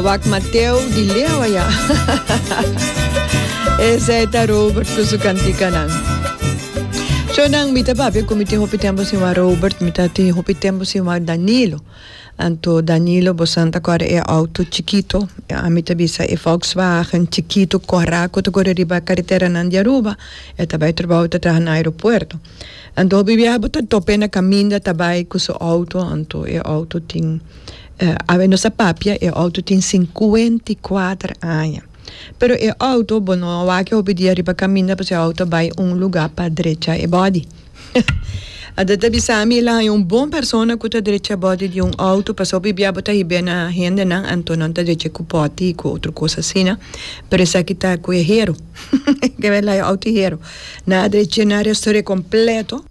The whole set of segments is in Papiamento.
Wak Mateo di Lewa ya. Esei ta Robert ku su kantikanan. So nan mi ta papia ku mi tin hopi tempo sin wak Robert, mi ta tin hopi tempo sin wak Danilo. Anto Danilo bosan ta kore e outo chikito, ami ta bisa e Volkswagen chikito kora ku ta kore riba e kareteranan di Aruba. E ta bai trabou e ta traha na aeropuerto. Anto hopi biaha bo ta top'e na kaminda ta bai ku su outo, anto e outo tin, awe nos a papia, e outo tin sinkuenta i kuater aña. Pero e outo, bo no a wak e hopi dia riba kaminda pasobra e outo a bai un lugá pa drecha e bòdi. Ada ta bisa mi, el a haña un bon persona ku ta drecha e bòdi di un outo pasobra hopi biaha bo ta hib'é na hendenan, anto nan ta drech'é ku pòti i ku otro kos asina, pero esaki ta ku e hero. Ke bai laga auto hero. Na a dreche na restauré completo.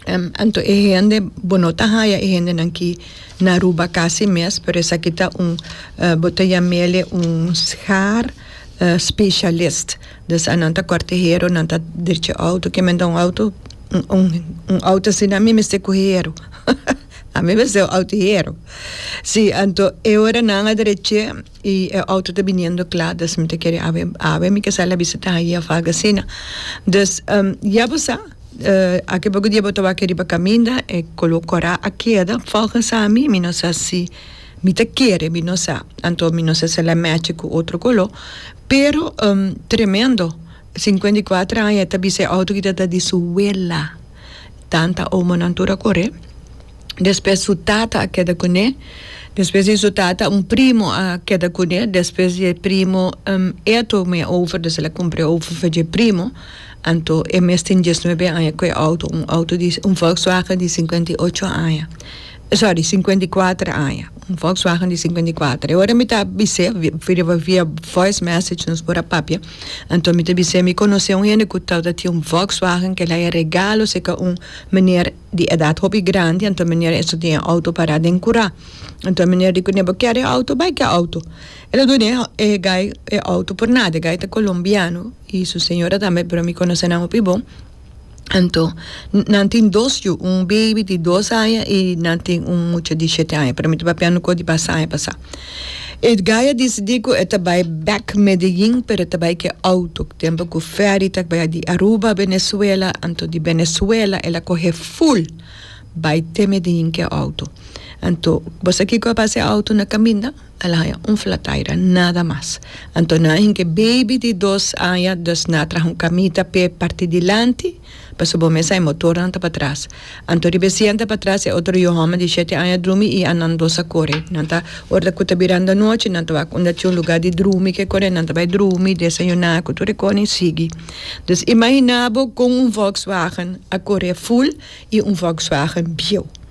Em, anto e hende, bo no ta haya e hendenan ki na Aruba casi mes, pero esaki ta un, eh, bo ta yam'ele un schaar, eh, specialist. Dus anan ta corte hero, nan ta dreche auto. Ke men ta un auto, un, un auto asina mi mester cu hero. Ami mester un auto hero. Si, anto e ora nan a dreche. y e auto ta biniendo cla dus mi ta kere awe awe mi ke sali a bisita ahi a faga asina dus ya bo sa aki poco dia bo ta wak riba caminda e color cora a keda volgens a mi mi no sa si mi ta kere mi no sa anto mi no sa si el a matchi cu otro color pero tremendo cincuenta y cuatro aña e ta bisa e auto kita ta di su wela. Tanta omonan tur a coré. Despues su tata a keda cuné. Despues di su tata un primo a keda cuné. Despues di e primo e tur me over dus el a cumpre over for dje primo. Anto e mes tin diesnuebe aña cu e auto. Un auto di un volkswagen di cincuenta y ocho aña. sorry, sinkuenta i kuater aña, un Volkswagen di sinkuenta i kuater. E ora mi ta bis'é, riba via voice message nos por a papia, anto mi ta bis'é mi konos'é un hende ku tabata tin un Volkswagen ku el a haya regalo seka un meneer di edat hopi grandi, anto e meneer esei tin e outo pará den kurá. Anto e meneer di kuné, bo kèr e outo? Bai ku e outo. El a dun'é e guy e outo por nada, e guy ta kolombiano i su señora tambe, pero mi konos'é nan hopi bon. Anto, nan tin dos yu, un beibi di dos aña i nan tin un mucha di shete aña, pero mi ta papia nokoh di basta aña pasá. Edgay a disidí ku e ta bai bèk Medellín, pero e ta bai ku e outo, tempu ku fèri ta baya di Aruba, Benezuela, anto di Benezuela el a kohe ful bai te Medellín ku e outo. Anto, bo sa kiko a pasa e outo na kaminda? Al haña un flataira, nada mas. Anto nan hinke baby di dos aña, dus na traha un kamita p'e parti dilanti, pa su bon mesa e motornan ta patras. Anto riba e sienta patras e otro yu hòmber di shete aña drumi i annan dos a kore. Nan ta, ora ku ta biranda nochi, nan ta wak unda tin un lugá di drumi ke kore, nan ta bai drumi, desayuná ku tur e kosnan i sigui. Dus imaginá bo kon un Volkswagen a kore ful i un Volkswagen bieu.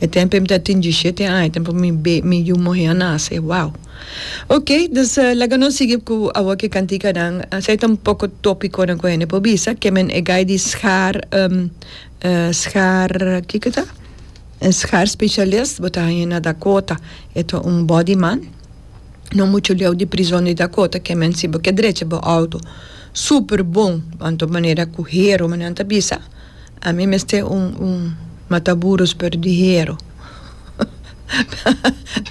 E tempo em ta tin dishete aña tempo mi be mi yu muhe a nase wow ok dus laga nos sigui cu awo ki cantikanan esey ta un poco topiconan cu hende por bisa kemen e gai di schaar schaar kiko ta schaar specialist bo ta haña na Dakota e ta un body man no mucho leu di prison di Dakota kemen si bo ke drecha bo auto super bon anto manera cu hero manera nan ta bisa. A mi mester un un mataburus pero di hero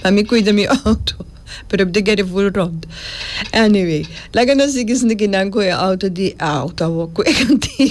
pa mi cuida mi auto pero mi ta get e full rond anyway laga nos sigui sintikinan cu e auto di auto awo cu e cantica.